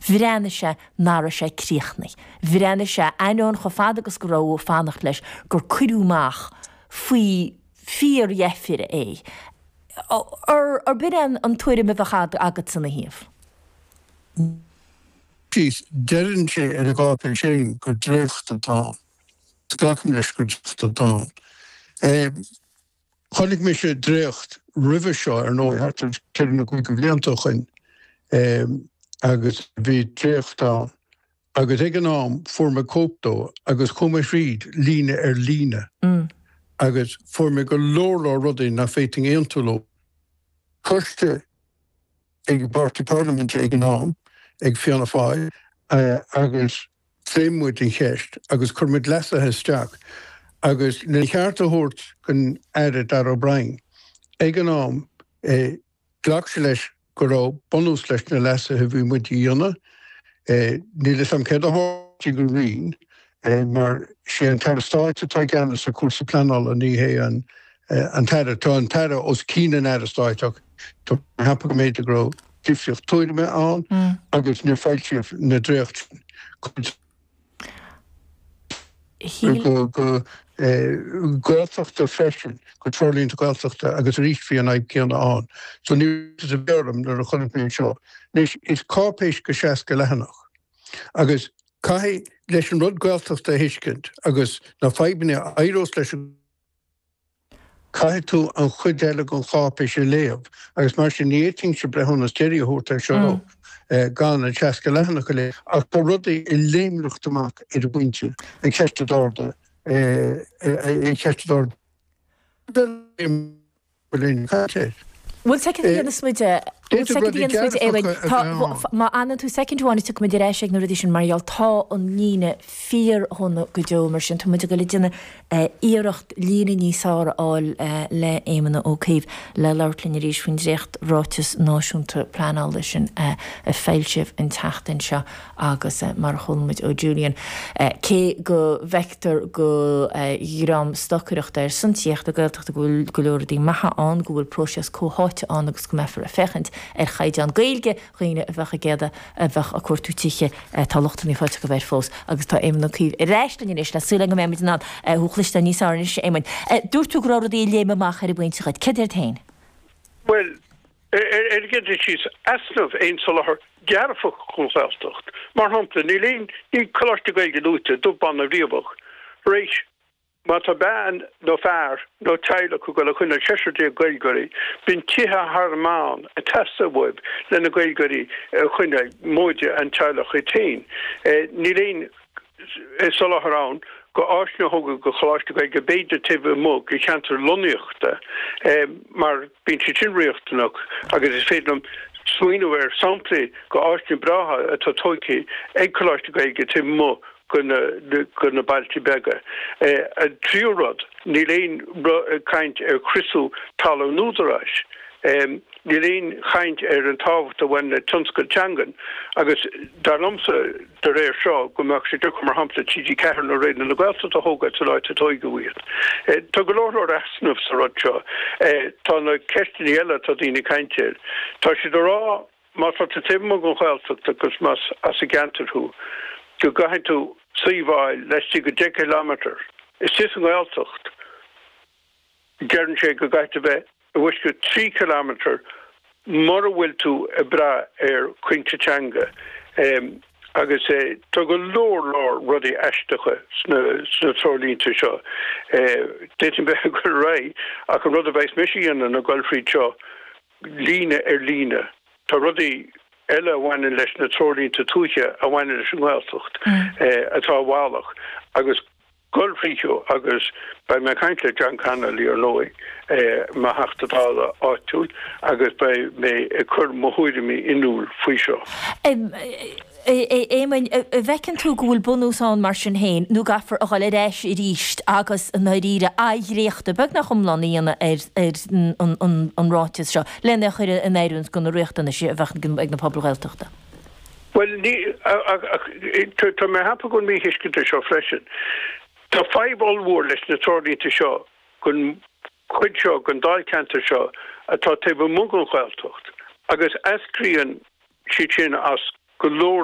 Bhreathnaigh sé nach raibh sé críochnaithe. Bhreathnaigh sé, ainneoin chomh fada agus go raibh muid ag fanacht leis, gur cuireadh amach faoi fíordheifir é. Ar b'in é an tuairim a bheadh agatsa ina thaobh? Deireann sé ar an gcáipéis féin gur dréacht atá ann. Glacaim leis gur dréacht atá ann. Chonaic mise dréacht roimhe seo, ar ndóigh, thart ar cheithre nó cúig de bhlianta ó shoin, agus bhí dréacht ann, agus ag an am fuair mé cóip dó agus chuaigh mé thríd, líne ar líne, agus fuair mé go leor leor rudaí nach bhféadfainn aontú leo. Coiste ag an bPáirtí Parlaiminte ag an am, ag Fianna Fáil, agus Phléigh muid an cheist agus chuir muid leasuithe isteach agus lena cheart a thabhairt don Aire Darragh O'Brien ag an am, ghlac sé leis go raibh bunús leis na leasuithe a bhí muid a dhéanamh. Níl a fhios agam céard a tharla go cruinn mar is é an tAire Stáit atá i gceannas ar chúrsaí pleanála, ní hé an tAire. Tá an tAire os cionn an Aire Stáit ach tá mé ag ceapadh go mb'fhéidir go raibh. difríocht tuairime ann agus níor foilsíodh na dréachtaí sin. Shíl. go Gaeltachta freisin, go Treoirlínte Gaeltachta agus arís bhí an fhadhb céanna ann. So ní is a b'fhearr liom nuair a chonaic mé anseo. Anois, is cáipéis de sheasca leathanach agus caithfidh, leis an rud Gaeltachta a thuiscint agus na fadhbanna a éireos leis an Caithfidh tú an chuid eile den cháipéis a léamh agus mar sin ní fhéadfainnse breithiúnas deiridh a thabhairt anseo gan an 60 leathanach a léamh. Ach tá rudaí ag léimneacht amach ar an bpointe, an cheist a d'ardaigh an cheist a d'ardaigh. Bhfuil aon cheist aici? Bhfuil a fhios agat céard a dhéanfas muid, bhfuil a fhios agat céard a dhéanfas muid, a Éamoin? Tá, má fhanann tú soicind amháin is tiocfaidh muid ar ais ag na rudaí sin mar gheall tá an líne fíordhona go deo mar sin tá muid ag dul ag déanamh iarracht líne níos fearr a fháil le Éamon Ó Cuív le labhairt linn arís faoin dréacht ráiteas náisiúnta pleanála sin a foilsíodh an tseachtain seo. agus mar a chuala muid ó Julian, cé go bhfeictear don dream stocaireachta ar son tithíocht na Gaeltachta go bhfuil go leor rudaí maithe ann, go bhfuil próiseas comhtháite ann agus go mbeifear ag féachaint ar chaighdeán Gaeilge dhaoine a bheadh ag iarraidh a bheadh ag cuartú tithe, tá lucht an mhíshásaimh go léir fós agus tá Éamon Ó Cuív ar ais linn anois le súil go mbeimid in ann thú a chloisteáil níos fearr anois a Éamoin. Dúirt tú go raibh rudaí ag léim amach ar an bpointe agat. Céard iad féin? Bhuel, airgead síos easnamh aon soláthar dearfach don Ghaeltacht. Mar shampla, níl aon ní Coláistí Gaeilge luaite dubh, bán ná riabhach. Má tá bean nó fear nó teaghlach ag dul a choinneáil seisear déag Gaeilgeoirí, bíonn tithe thar an meán ag teastáil uathu lena Gaeilgeoirí a choinneáil, móide an teaghlach iad féin. Níl aon. soláthar ann go áiseanna a thógáil go Choláistí Gaeilge b'fhéidir taobh amuigh de cheantar lonnaíochta mar bíonn siad sin riachtanach agus is féidir liom smaoineamh ar shamplaí go áiseanna breátha atá tóigthe ag Coláistí Gaeilge taobh amuigh go na bailte beaga. An tríú rud, níl aon chaint ar chriosú talún an Údaráis. Níl aon chaint ar an tábhacht a bhaineann le tionscail teangan agus dar liomsa, de réir seo, go mbeadh sé deacair, mar shampla, TG4 nó Raidió na Gaeltachta a thógáil san áit a tóigeadh iad. Tá go leor leor easnamh sa rud seo. Tá na ceisteanna eile atá daoine ag caint orthu. Tá siad ag rá má tá tú taobh amuigh den Ghaeltacht agus más as an gceantar thú go gcaithfidh tú suíomh a fháil laistigh de 10 kilometre. Istigh sa nGaeltacht. Deireann sé go gcaithfidh tú bheith i bhfoisceacht 3 kilometre mura bhfuil tú ag brath ar chúinsí teanga agus tá go leor leor rudaí aisteacha sna treoirlínte seo. D'fhéadfainn bheith ag dul ar aghaidh ach an rud a bheas mise a dhéanamh ná a dhul thríd seo líne ar líne. Tá rudaí eile a bhaineann leis na treoirlínte tuaithe a bhaineann leis an nGaeltacht atá i bhfalach agus. Dul thríothu agus beidh mé ag caint le John Connolly ar ndóigh, mo Theachta Dála áitiúil, agus beidh mé ag cur mo thuairimí in iúl faoi seo. Éamoinn, an bhfeiceann tú go bhfuil bunús ann mar sin féin nó an gcaithfear a dhul ar ais arís agus i ndairíre athdhréachtú beagnach iomlán a dhéanamh ar an ráiteas seo lena chur in oiriúint go na riachtanais a bheadh ag na pobail Ghaeltachta? Bhuel, ní, ach, tá mé ag cheapadh go bhfuil míthuiscint anseo freisin. Tá fadhb ollmhór leis na treoirlínte seo don chuid seo den dáilcheantar seo atá taobh amuigh den Ghaeltacht agus eascraíonn siad sin as go leor